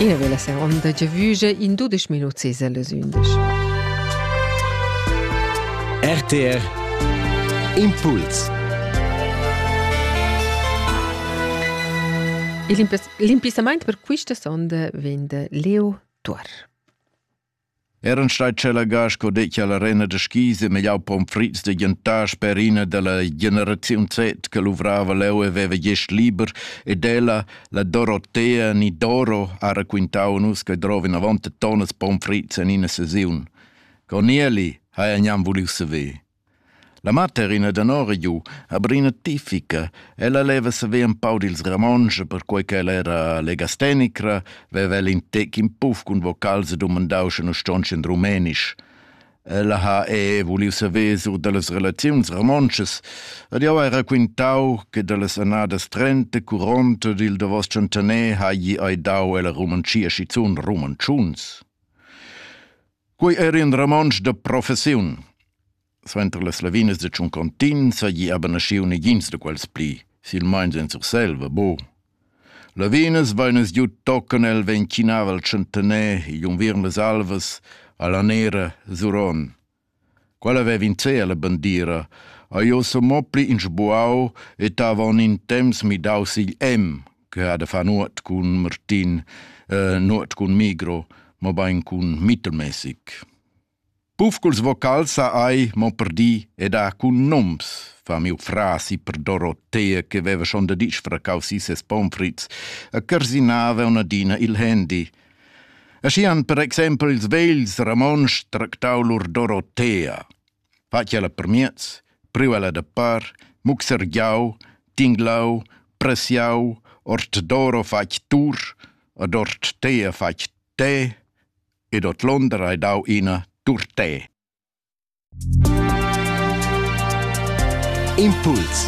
Ina vela seronda giavüge in dudesch minut ses las undisch. RTR Impuls Il impissamaint per quista sonda vegn de Leo Tuor. Eran stai tschelagà sco dettia la rena da skis e megliau pomfrits da gentar sper ina dalla generaziun Z che luvrava leu e veva gest liber ed ella, la Dorotea ni Doro, ha raquintau a nus che drova vinavon tonas pomfrits en ina sesiun. Con Nieli haja gnanc vuliu saver. La materina danora giu ha brina tipica. Ella leva saver ün pau dils Ramontsch, perquei ch'ella era legastenicra, veva ella in tec in puff cun vocals e dumandau sche nus ston in rumenisch. Ella ha e vuliu saver sur dallas relaziuns romontschas ed jeu hai raquintau che dallas annadas trenta curonta dil davos tschantaner hagi ei dau ella romontschia schizun romontschuns. Quei era in romontsch da professiun. Suenter las lavinas da Tschuncontin seigi aber naschiu negins da quels pli, silmeins en Surselva, bo. Lavinas vegnas giu tochen el vegn chinava il Centener igl unviern las Alvas alla nera Zuron. Quella vev in cea la bandira, a jo so mo pli in sbuau et havon in temps midau sigl em, che ha da far nuot cun Martin, eh, nuot cun Migro, ma bain cun mittelmäßig. Pufculs vocals ha ai mo per di ed ha cun noms, fa miu frasi per Dorotea che veva schon da disfracau si ses pommes frites e carsinava un'adina il handy. Aschian per exempel ils vegls Ramonsch tractau lur Dorotea. fatg ella permiez, priu ella da per, muxergiau, tinglau, pressiau, ortdoro fatg tur, ad orttea fatg te, ed ordlonder hai dau ina turtè. Impuls